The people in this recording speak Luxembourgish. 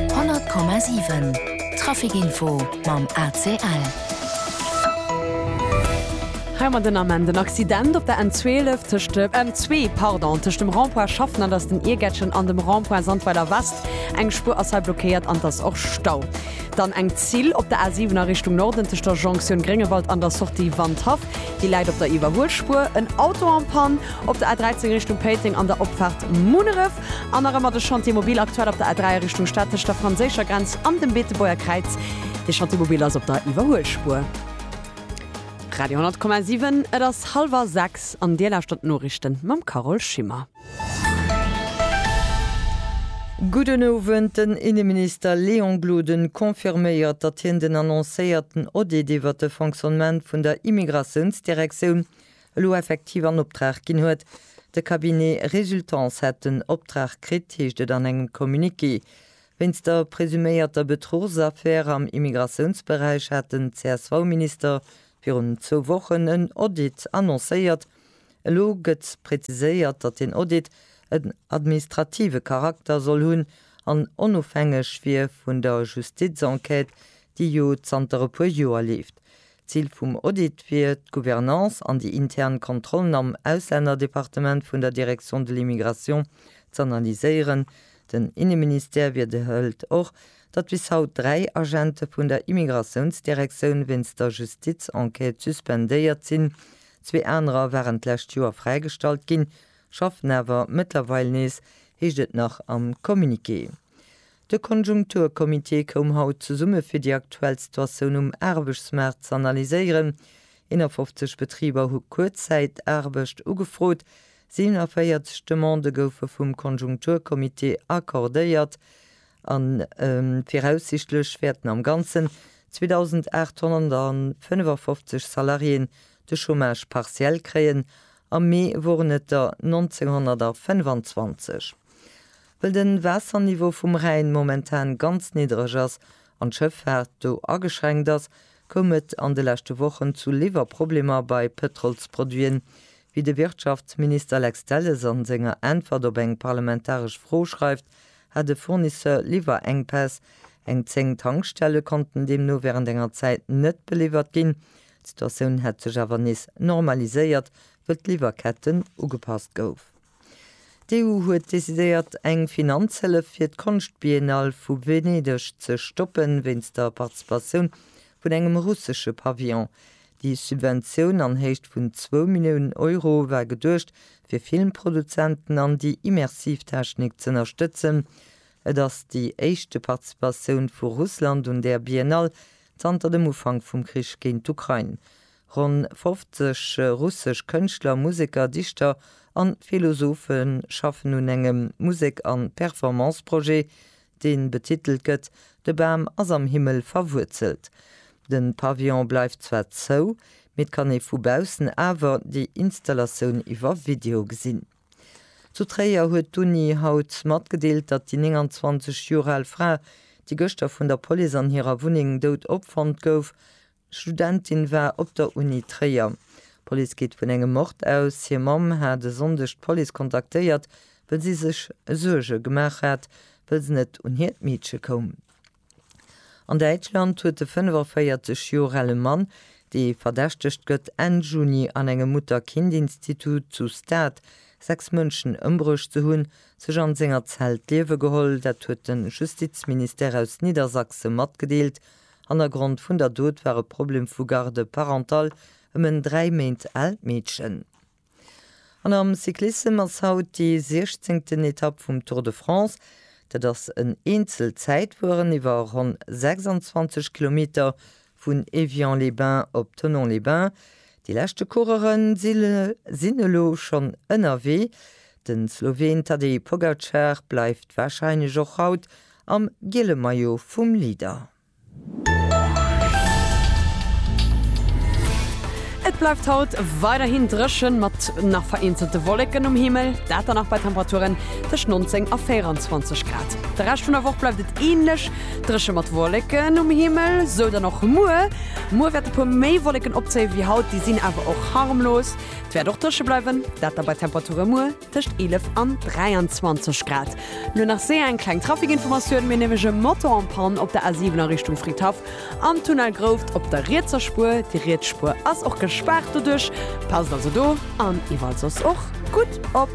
100,7 Traficinfo mam ACL. Hei mat den Ament en Accident op der N12 tëscht dem M2, pardon, tëscht dem Rond-point Schaffen an ass den Iergättchen an dem Rond-point Sandweiler West. Eng Spuer ass hei blockéiert an et ass och Stau. Dann eng Zill op der A7 a Richtung Norden tëscht der Jonktioun Gréngewald an der Sortie Wandhaff. Déi läit op der Iwwerhuelspuer. En Auto en panne op der A13 Richtung Péiteng an der Opfaart Munneref. An nach ëmmer de Chantier Mobil, aktuell op der A3 a Richtung Statesch, der franséischer Grenz an dem Beetebuerger Kräiz. De Chantier Mobil ass op der Iwwerhuelspuer. Radio 10,7, et ass hallwer sechs an Dir lauschtert d'Noriichten mam Carole Schimmer. Gudden Owend, Den Inneminister Léon Gloden confirméiert, datt hien den annoncéierten Audit iwwert de Fonctionnement vun der Immigratiounsdirektioun elo effektiv an Optrag ginn huet. De Cabinet Résultance hätt den Optrag kritt, heescht et an engem Communiqué. Wéinst der presuméierter Betruchsaffär am Immigratiounsberäich hat den CSV-Minister virun zwou Wochen en Audit annoncéiert. Elo gëtt preziséiert, datt deen Audit en administrative Charakter soll hunn an onofhängeg wier vun der Justizenquête, déi jo zanter e puer Joer leeft. D'Zil vum Audit wier, d'Gouvernance an déi intern Kontrollen am Auslännerdepartement vun der Direction de l'immigration z'analyséieren. Den Inneministère wiederhëlt och, datt bis haut dräi Agente vun der Immigratiounsdirektioun wéinst der Justizenquête suspendéiert sinn. Zwee anerer waren d'lescht Joer fräigestallt ginn, schaffen awer mëttlerweil nees, heescht et nach am Communiqué. De Konjunkturcomité koum haut zesumme fir déi aktuell Situatioun um Aarbechtsmaart ze analyséieren. 51 Betriber hu Kuerzzäitaarbecht ugefrot, 47 Demandë goufe vum Konjunkturcomité accordéiert a viraussichtlech wäerten am Ganzen 2.855 Salariéen de Chômage partiel kréien. Am Mee woren et der 1.925. Well de Waasserniveau vum Rhäin momentan ganz niddreg ass an d'Schëffaart do ageschränkt ass, koum et an de leschte Wochen zu Liwwerproblemer bei Pëtrolsproduiten, wéi de Wirtschaftsminister Lex Delles a senger Äntwert op eng parlamentaresch Fro schreift, hat e Fournisseur Liwwerenkpäss. Eng 10 Tankstelle konnten deemno wärend enger Zäit net beliwwert ginn. D'Situatioun hätt sech awer nees normaliséiert, wëll d'Liwwerketten ugepasst goufen. D'EU huet decidéiert, eng Finanzhëllef fir d'Konschtbiennale vu Venedeg ze stoppen, wéinst der Participatioun vun engem russesche Pavillon. Déi Subventioun an Héicht vun zwou Milliounen Euro war geduecht, fir Filmproduzenten an déi immersiv Technik z'ënnerstëtzen. Et ass déi éischte Participatioun vu Russland un där Biennale zanter dem Ufank vum Krich géint d'Ukrain. Ronn 50 russesch Kënschtler, Museker, Dichter an Philosophe schaffen un engem Musek an Performance-Projet, deen betitelt gëtt De Bam ass am Himmel verwuerzelt. Den Pavillon bleift zwar zou, mee et kann ee vu baussen awer déi Installatioun iwwer Video gesinn. Zu Tréier huet d'Uni haut matgedeelt, datt déi 29 Joer al Fra, déi gëschter vun der Police an hirer Wunneng dout opfonnt gouf, Studentin war op der Uni Tréier. D'Police geet vun engem Mord aus. Hir Mamm hat e Sonndeg d'Police kontaktéiert, wëll si sech Suerge gemaach hat, wëll se net un hiert Meedche koum. An Däitschland huet de 45 Joer ale Mann, dee verdächtegt gëtt, Enn Juni an engem Mutter-Kind-Institut zu Stade sechs Mënschen ëmbruecht ze hunn, sech an senger Zell d'Liewe geholl. Dat huet de Justizministère aus Niedersachse matgedeelt. Hannergrond vun der Dot war e Problem vu Garde parentale ëm en dräi Méint aalt Meedchen. An am Cyclissem ass haut déi siechzéngten Etapp vum Tour de France. Dat ass en Eenzelzäitfueren iwwer ronn 26 Kilometer vun Évian-les-Bains op Thonon-les-Bains. Déi leschte Coureuere sinn elo schonn ënnerwee. De Sloween Tadej Pogacar bleift warscheinlech och haut Am giele Maillot vum Leader. Et bleift haut weiderhin dréchen, mat nach vereenzelte Wolleken um Himmel, dat dann nach bei Temperaturen tëscht 19 a 24 Grad. De Rescht vun der Woch bleift et änlech dréche mat Wolleken um Himmel, sou dann och muer. Muer wäert e puer méi Wolleken opzéie wéi haut, déi sinn awer och harmlos. Et wäert och dréche bleiwen, dat da bei Temperature muer. Tëscht 11 an 23 Grad. Lo nach séier eng kleng Trafikinformatioun. Mir hu nämlech e Moto en panne op der A7 a Richtung Fridhaff am Tunnel Grouft op der rietser Spuer. Déi riets Spuer ass och gespaart doduerch. Passt also do an iwwerall soss och gutt op.